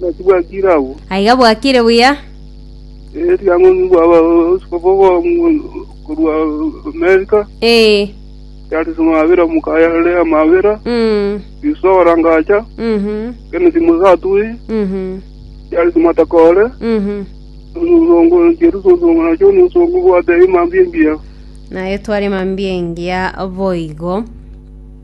Naki bwakire agwo. Aiga bwakire buya. Erio ang'e bwa abaskofu bo korwa Amerika, Ee. Charles Mabira mokaya Lea Mabira, Mm. Yusufu Orangacha, Mhm. Kennedy Musatui, Mhm. Charles Matakore, Mhm. omusongo Jeruso osongo nacho omusongo bwate imambia engiya. Naye tware mambia engiya boigo.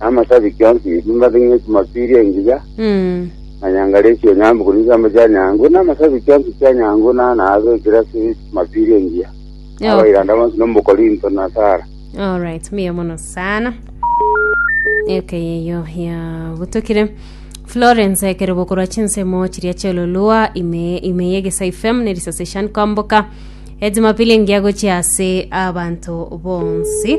na amasabiki onsi ebimba bing'e chimapiri engiya Mm. na nyangare esio nyambu kuri chiambo chia nyangu na amasabiki onsi chia nyangu na naabe ekirasi chimapiri engiya Okay. abairanda bonsi nomukorinto na sara Alright, mbuya mono sana. Eke yeyo ya gutokire. Florence ekero bokorwa chinsemo chiria chiololua ime ime ye Gesai FM ne risase shan kwamboka. Ejumapili ngia gochia ase abantu bonsi.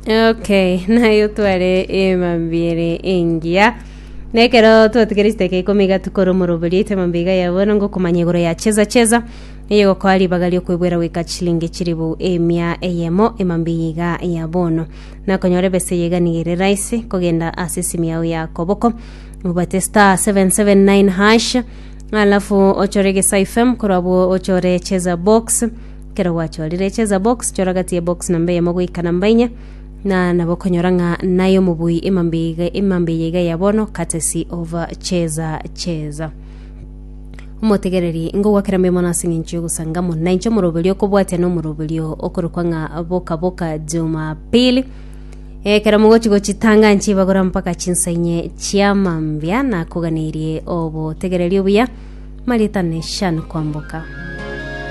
Okay, nayo tware emambiere engiya. Nekero twatigere chiteke ikumi iga tukore omorobori ite mambi iga ya bono ngokomanya igoro ya cheza cheza eye gokoa ribaga riokwebwera goika chilingi chiribu emia eyemo emambi eye iga ya bono nakonyora ebesa eye iga niga ere raisi kogenda ase esimu yao ya koboko obate star 779 hash alafu ochore gesa fm korwa abwo ochore cheza box Kero gwachorire echeza box, chora gati ye box namba eyemo goika namba inya na nabo okonyora ng'a naye omobui emambe iga- emambe eye iga ya bono courtesy of cheza cheza omotegereri ngogwakera mbe mono ase eng'encho y'ogosangamo na inche omoroberio okobwatia na omoroberio okorokwa ng'a boka boka jumapili ekero mogochi gochitanga nchibagora mpaka chinsainye chia mambia nakoganeirie obotegereri obuya maritane shan kwamboka